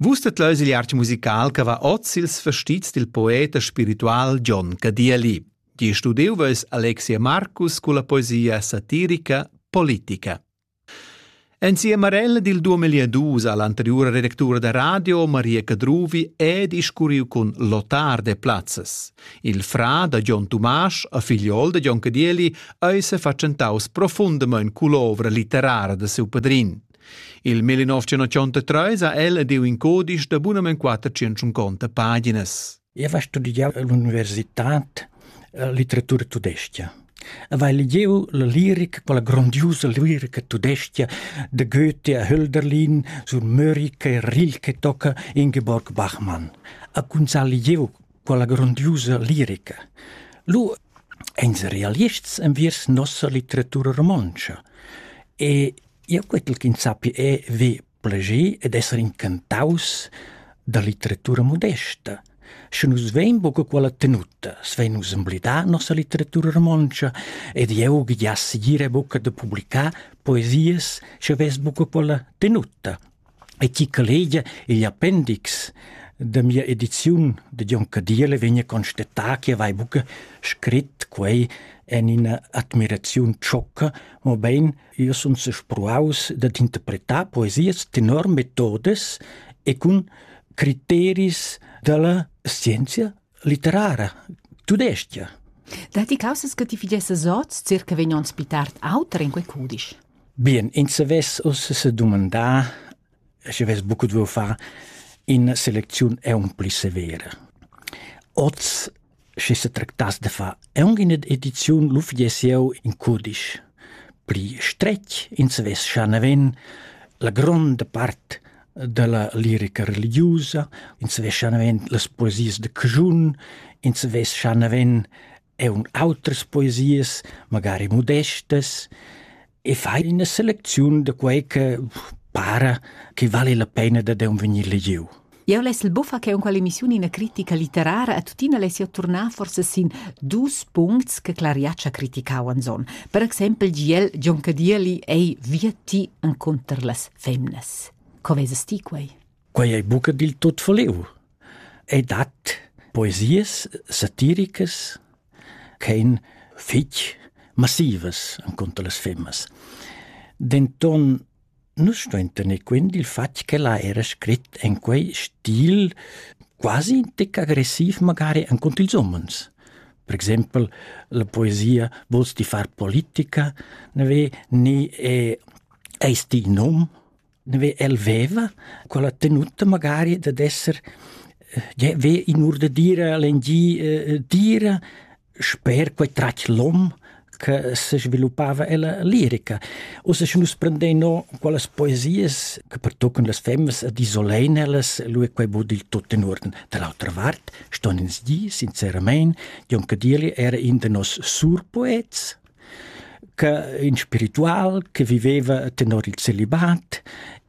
Vus det leus il arte musical che va oz ils vestits dil poet e spiritual John Cadieli. Di studiu veus Alexia Marcus culla poesia satirica Politica. Insieme Marella dil 2002 all'anteriore redactura da radio Maria Cadruvi è discurriu con Lotar de Platzes. Il fra da John Tomasz a figliol de John Cadieli eise facentaus profundamente cull'ovra litterara de seu padrin. Il 1933 ha el ed il in codice da bunament 450 paginas. Eu va studiar all'università litteratura tudesca. Vai legiu la lirica, quella grandiosa lirica tudesca de Goethe a Hölderlin sur Mörike e Rilke tocca Ingeborg Bachmann. A kun sa legiu quella grandiosa lirica. Lu ens realists enviers nossa litteratura romontsch. E Jeu quetel ch'ins sappi ev plascher ed esser incantaus da litteratura modesta. Sche nus vein buca quella tenuta, svein nus emblidar nossa litteratura romontscha ed jeu giass ira buca da publicar poesias sche vess buca quella tenuta. e chi collega igl appendix da mia ediziun da Jon Cadiele vegna constatà che vai buca scrit quei en ina admiraziun tschocca, mobein io sun spruaus dad interpretar poesias tenor metodes e cun criteris dalla scienzia Litterara, tudestga. Datti causas che ti fidiessas oz circa vegn onns pli tard auter in quei cudisch? Bien, ins savess uss se dumandar, sche ves buc duo far in seleziun è un pli severa. Oz, sche se tractas de fa, è un in edizion lu fidiessieu in cudisch. Pli stretg, ins savess schaneven, la gronda part dalla lirica religiusa, ins vescha naven las poesias da caschun, ins vescha naven eun autras poesias, magari modestas, e fai ina selecziun da quei che para che vali la pena da deun vegnir legiu. Eu lessel buffa che unqual emissiun ina critica litterara a tuttina lessio turnar forse sin dus puncts che Clariaccia criticauan son. Per exempel giel John Cadieli ei via ti en conter las femnas. Co vesas ti quei? Quei ei buca dil tut verliu. Ei dat poesias satiricas ch'ein fetg massivas encunter las femmas. Denton nus stuein tener quint dil fatg che la era scrit en quei stil quasi tec agressiv magari encunter ils umens. Per exempel la poesia Volst ti far politica ne ve ni è Eis ti in hom? El veva quella tenuta magari dad esser eh, ve in ur da dire l'engi eh, dire sper quei tratg lom che se sviluppava ella lirica. O se nus prendei no quelles poesies che pertoccon las femmes ed isolein ellas, lu è quei bod il tot in orden. Dall'altra vart ston ins di, sincerament, Jon Cadirli era in de nos surpoets, che in spiritual che viveva tenor il celibat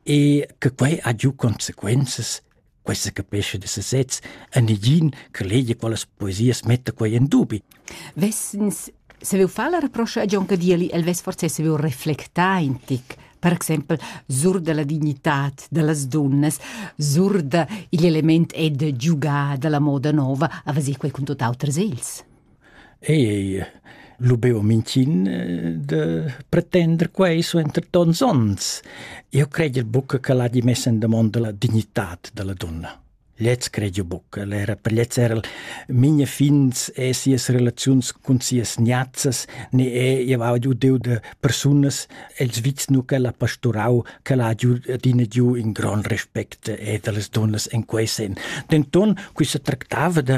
e che quei ha giu consequenzas questa capesce de sesez a negin che legia quellas poesias metta quei in dubi. Vessens se veu far la reproscha a John Cadieli, el vess forse se veu reflectar in tic per exempel sur della dignità delle donne, sur degli element ed giugà della moda nuova, a vasir quei con tutt'autre sels. ei lu beo minchin de pretender quei suenter tons onns. Io credio buca che l'ha di messa in damonda la dignitat della donna. Lez credio buca, era per lez era minha fins e sias relaziuns cun sias niazzas ne e io va giu deu de persunas els vits nu che l'ha pasturau che l'ha giu adina giu in gran respect e das donnas in quei sen. Denton quissa tractava de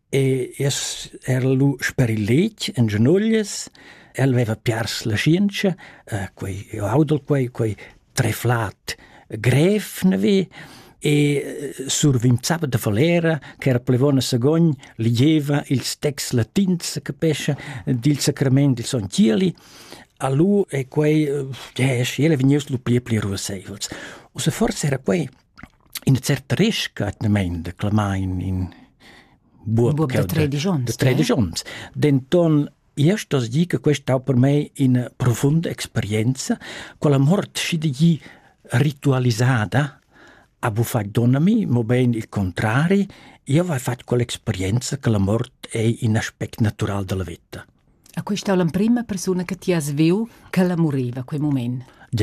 E es era lu sper il letg en gianoglias. El veva piars la schientscha, eh, quei io audel quei, quei treflat grev navi e eh, survinzava da falera che era plevona sagogn ligieva ils texts latins che pescia dil sacrament dil son Cieli. Alu e quei, eh, yes, ele vegnius lu pli e pli ruasseivels. O se forse era quei Ina certa resca atgnamain da clamain in buob, buob da tredisch onns. Da tredisch onns. Denton Io sto dir che questa ha per me una profonda esperienza, con la morte si di ritualisata avevo fatto donnami, ma ben il contrario, io avevo fatto quell'esperienza che la morte è un aspetto naturale della vita. A questa è l'emprima persona che ti has visto che la moriva quel momento.